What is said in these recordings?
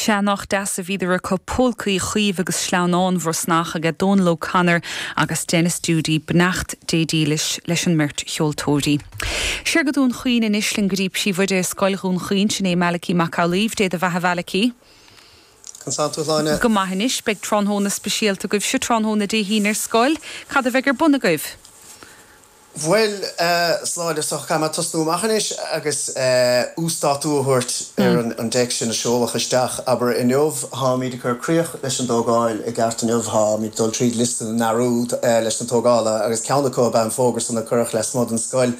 Sea, nach deas a bhíodar acu, Polca Uí Chaoimh agus Sleamhnán Bhrosnach aige Dónal O'Connor agus Denis Doody. Beannacht Dé dílis leis an mbeirt cheoltóirí. Siar go Dún Chaoin anois linn go dtí Príomhoide Scoil Dhún Chaoin, sin é Malachy Mac Amhlaoibh. Dé do bheatha a Mhalachy. Cén saol tú Shláine? Go maith anois, beidh tráthnóna speisialta agaibhse tráthnóna Dé hAoine ar scoil. Cad a bheidh ar bun agaibh? Bhuel, a Shláine, is dócha, caithfidh mé tosnú amach anois agus uasdátú a thabhairt ar an dtéacs sin a seoladh isteach, abair, inniu. Táimid ag cur críoch leis an dtógáil i gceart inniu, táimid ag dul tríd liosta na ndearúd leis na tógálaithe agus ceann acu ab ea an fógra san a cuireadh leasmuigh den scoil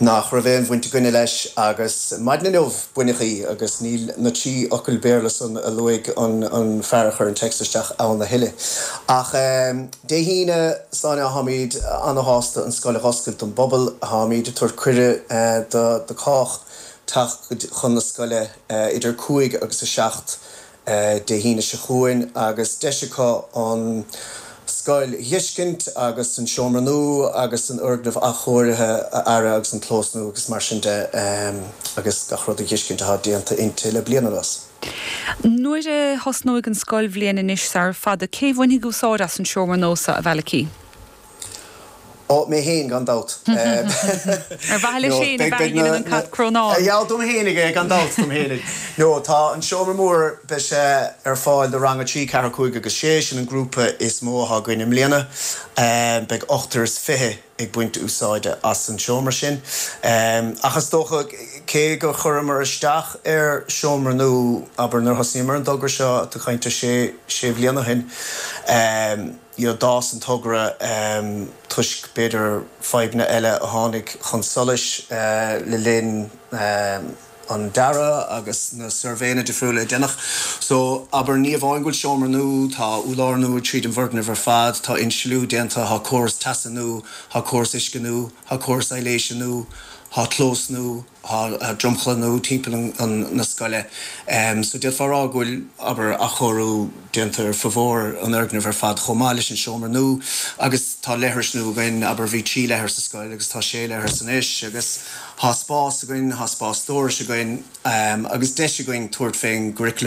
nach raibh aon bhaint againne leis agus maidin inniu baineadh í agus níl na trí fhocal Béarla san a luaigh an fear a chuir an téacs isteach ann a thuilleadh ach Dé hAoine ansan táimid an-shásta an scoil a dh'oscailt don bpobal. Táimid ag tabhairt cuireadh do chách teacht chun na scoile idir 5 agus 7 Dé hAoine seo chugainn agus deis acu an scoil a dh'fheiscint agus an seomra nua agus an fhoirgneamh athchóirithe abair agus an clós nua agus mar sin de agus gach rud a dh'fheiscint atá déanta inti le bliain anuas. Nuair a thosnóidh an scoilbhliain anois sar fada, cé bhainfidh úsáid as an seomra nua so, a Mhalachy? Ó, mé féin, gan dabht. Ar mhaithe leis féin a dheineann an cat crónán? Ea, dom féinig é, gan dabht, dom féinig. No, tá an seomra mór, beidh sé ar fáil do rang 3, 4, 5 agus 6, sin an grúpa is mó atá againn i mbliana. Beidh ochtar is fiche ag baint úsáide as an seomra sin. Ach is dócha, cé gur chuireamar isteach ar sheomra nua, abair, nuair a thosnaíomar ar an dtogra seo, tá tú ag caint ar sé, sé bhliain ó shin, you know, d'fhás an togra toisc, b'fhéidir, fadhbanna eile a tháinig chun solais le linn, an dearadh agus na suirbhéanna difriúla a deineadh. So, abair, ní amháin go bhfuil seomra nua, tá urlár nua tríd an bhfoirgneamh ar fad, tá insliú déanta, tá córas teasa nua, tá córas uisce nua, tá córas aibhléise nua, tá clós nua, tá dromchla nua timpeall na scoile. So, d'fhéadfá a rá go bhfuil, abair, athchóiriú déanta ar formhór an fhoirgnimh ar fad chomh maith leis an seomra nua. Agus tá leithris nua againn, abair, bhí trí leithreas sa scoil agus tá sé leithreas anois agus, Tá spás againn, tá spás stórais againn agus deis againn tabhairt faoin gcuraclam.